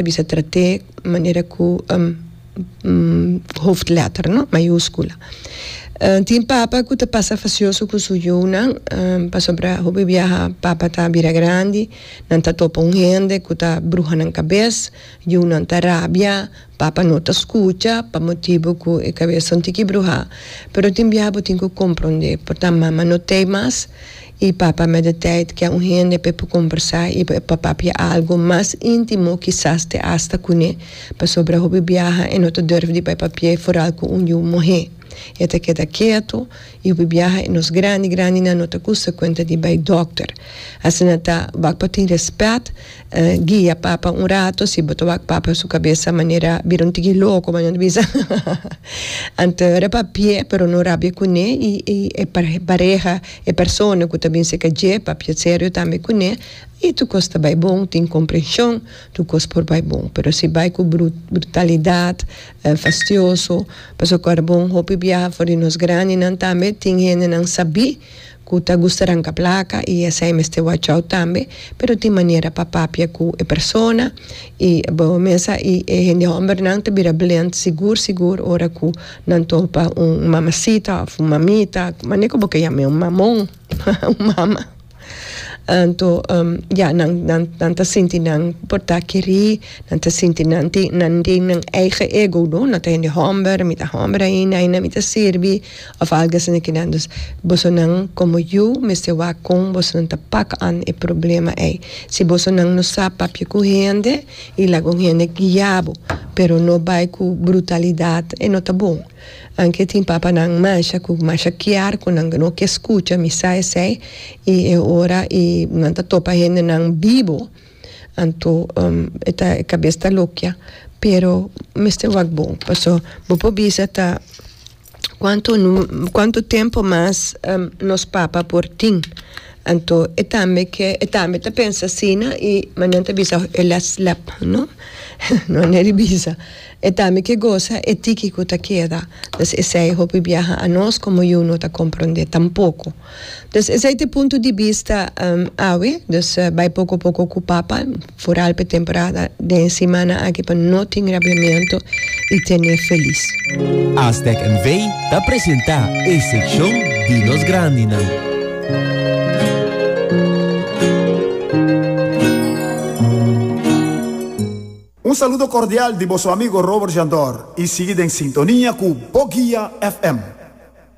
ta bisa trat'é manera ku hoofdletter, no? Mayúskula. Tin papa ku ta pasa fasioso ku su yunan, pasobra hopi biaha papa ta bira grandi, nan ta topa un hende ku ta bruha nan kabes, yunan ta rabia, papa no ta skucha pa motibu ku e kabes ta un tiki bruhá. Pero tin biaha bo tin ku komprondé, por ta mama no t'ei mas. I papa met e tijt kia un hende pe por combersa i pa papia algo mas intimo kisas te hasta cune pasobra hopi biaha e no ta durf di bai pa pie foral cu un yu mohe e ta keda keto i hopi biaha e nos grandi grandinan no ta gusta cuenta di bai doctor asina ta wak pa tin respet Guia papa un rato si bo ta wak papa su kabesa manera bira un tiki loko manera nan ta bisa anto raba p'e pero no rabia kuné i e pareha e persona ku ta bin seka dje papia serio tambe kuné i tur kos ta bai bon tin komprenshon tur kos por bai bon pero si bai ku brutalidat fastioso pasobra bon hopi biaha for di nos grandinan tambe tin hendenan sabí. ku ta gusta ranka plaka i esei mester wachau tambe pero tin manera pa papia ku e persona i bo mesa i e hende hòmbernan ta bira blend sigur sigur ora ku nan topa un mamasita òf un mamita mane ku bo ke yam'e un mamon un mama anto ya nan nan nan ta sinti nan por ta kerí nan ta sinti nan tin nan tin nan eigen ego no nan ta hende hòmber mi ta hòmber ainda ainda mi ta sirbi. Of algu asina ki nan. Dus bosonan komo yu mester wak kon bosonan ta pak an e problema ei. Si bosonan no sa papia ku hende i laga un hende guia bo, pero no bai ku brutalidat e no ta bon. Anke tin papanan masha ku masha kier ku nan no ke skucha mi sa esei i e ora i nan ta topa hendenan bibo anto e ta e kabes ta lokia pero mester wak bon paso bo por bisa ta cuanto nu cuanto tempo mas nos papa por tin anto e tambe ke e tambe ta pensa asina y manan ta bisa e la slap no no a neri bisa e tambe ke gosa e tiki ku ta keda pues esei hopi biaha anos como yu no ta comprende tampoco. Dus esei ta e punto di bista awe, dus bai poko poko ku papa, foral pa e temporada den e simana aki pa no tin rabiamentu i tene felis. Aztec NV ta presentá e sekshon di nos grandinan. Un saludo cordial di bo su amigo Robert Jandor y sigui den sintonia cu Bo Guia FM.